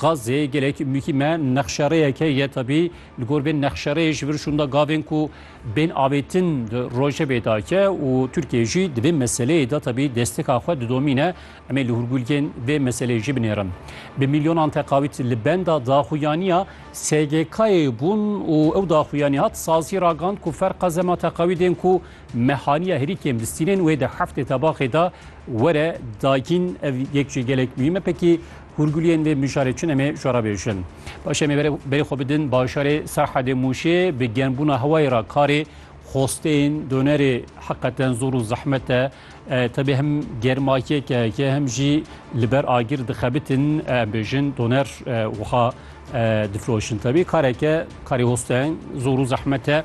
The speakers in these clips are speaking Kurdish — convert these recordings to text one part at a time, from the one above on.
Gazê gelek muhîm e, nexşerêyeke ye tebî li gor vê nexşerêyê ji vir şûnda gavên ku bên avêtin di rojevê de ye û Tirkiye jî di vê meseleyê de tebî desteka xwe didomîne. Em ê li hûrgulgên vê meseleyê jî binêrin. Bi milyonan teqawît li benda daxuyaniya SGK'ê bûn û ew daxuyanî hat sazî ragand ku ferqa zema teqawîdên ku me haniye herî kêm distînên wê di heftê tebaxê de were dagîn. Ev yek jî gelek muhîm e pekî Hûrguliyên vê mijarê çi nemê ji re bêjin. Paşê em ê berê xwe bidin bajarê Serhedê Mûşê bi germbûna hewayê re karê xwesteyên donerê heqeten zor û zehmet e. Tevî hem germa yek e yekê hem jî li ber agir dixebitin em bêjin doner wiha difiroşin. Tevî kareke karê hosteyan zor û zehmet e.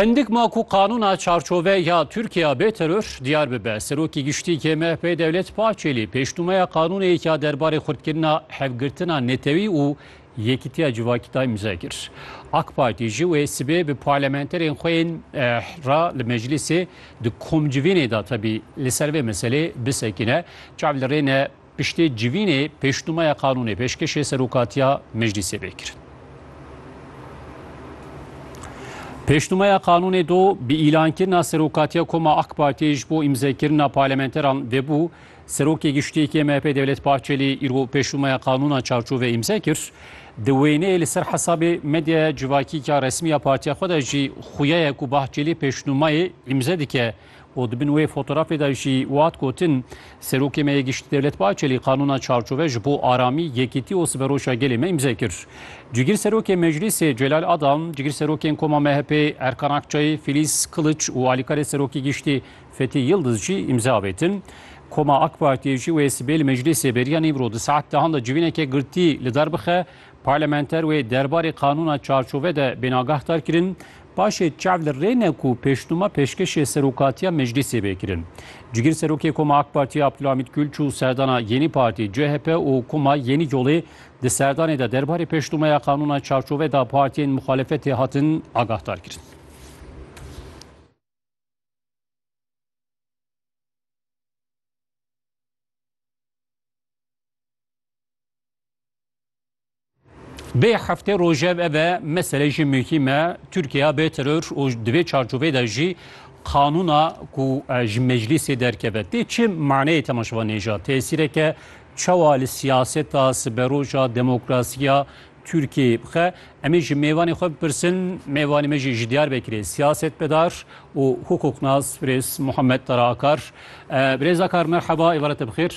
Hindik ma ku qanûna çarçove ya Tirkiya bê teror diyar bibe. Serokê Giştî yê MHP'ê Dewlet Bahçelî pêşnûmeya qanûneyek ya derbarê xurtkirina hevgirtina netewî û yekîtiya civakî da îmza kir. AK Partî jî wê sibê bi parlamenterên xwe yên re li meclîsê di komcivînê de tevî li ser vê meselê bisekine. Çav li rê ne. Piştê civînê pêşnûmeya qanûnê pêşkêşê Serokatiya Meclîsê bê kirin. Pêşnûmeya qanûnê do bi îlankirina Serokatiya Koma AK Partiyê ji bo îmzekirina parlementeran vebû, Serokê Giştî yê MHP'ê Devlet Bahçelî îro pêşnûmeya qanûna çarçovê îmze kir. Di wêneyê li ser hesabê medyaya civakî ya resmî ya partiya xwe de jî xuya ye ku Bahçelî pêşnûmeyê îmze dike. û di bin wê fotorafê de jî wihat gotin, Serokê me yê Giştî Devlet Bahçelî qanûna çarçove ji bo aramî, yekîtî û siberoşa gelê me îmze kir. Cigir Serokê Meclîsê Celal Adam, Cigir Serokên Koma MHP'ê Erkan Akçayê, Filiz Kiliç û Alîkarê Serokê Giştî Fethî Yildiz jî îmze avêtin. Koma AK Partiyê jî wê sibê li Meclîsê beriya nîmro di saet dehan de civîneke girtî li der bixe, Parlamenter wê derbarê qanûna çarçove de bênagah dar kirin, paşê çav li rê ne ku pêşnûma pêşkêşê serokatiya meclîsê bê kirin. Cigîr Serokê Koma AK Partî Abdulhamîd Gul çû serdana Yenî Partî, CHP û Koma Yenî Yolê di serdanê de derbarê pêşnûmeya qanûna çarçove de partiyên muxalefetê hatin agahdar kirin. Bê heftê rojev ev e mesele jî muhîm e Tirkiya bê teror û di vê çarçovê de jî qanûna ku e, ji meclîsê derkeve tê çi maneyê temaşevan nêja tesîreke çawa li siyaseta siberoja demokrasiya Türkiye bixe em ê ji mêvanê xwe bipirsin mêvanê me jî ji Diyarbekirê siyasetmedar û hukuknas Birêz Muhammed Tara Akar e, Birêz Akar merheba êvarete bixêr.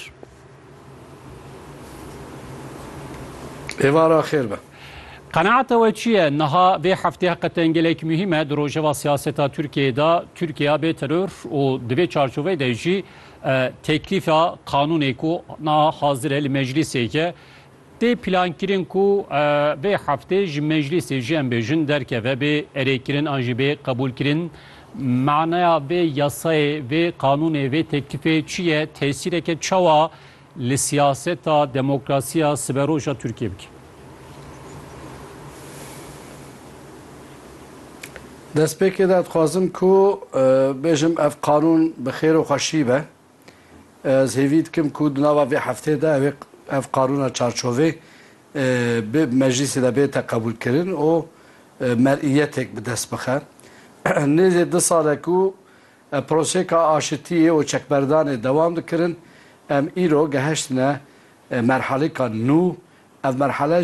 Êvara xêr be. Qenaeta we çi ye? Niha vê heftê heqeten gelek muhîm e di rojeva siyaseta Tirkiyeyê de. Tirkiye bê teror û di vê çarçoveyê de jî teklîfa qanûnê ku niha hazir e li meclîsê ye Tê plankirin ku vê heftê ji meclîsê jî em bêjin derkeve bê erêkirin an jî bê qebûlkirin. Manaya vê yasayê, vê qanûnê, vê teklîfê çi ye? Tesîreke çawa li siyaseta demokrasiya siberoja Tirkiyê bike? Destpêkê de dixwazim ku bêjim ev qanûn bi xêr û xweşî be. Ez hêvî dikim ku di nava vê hefteyê de ev ê ev qanûna çarçovê bi meclîsê de bête qebûlkirin û mer'iyetek bi dest bixe. Nêzê du sal e ku prosêka aşitiyê û çekberdanê dewam dikirin, em îro geheştine merhalêka nû, ev merhale,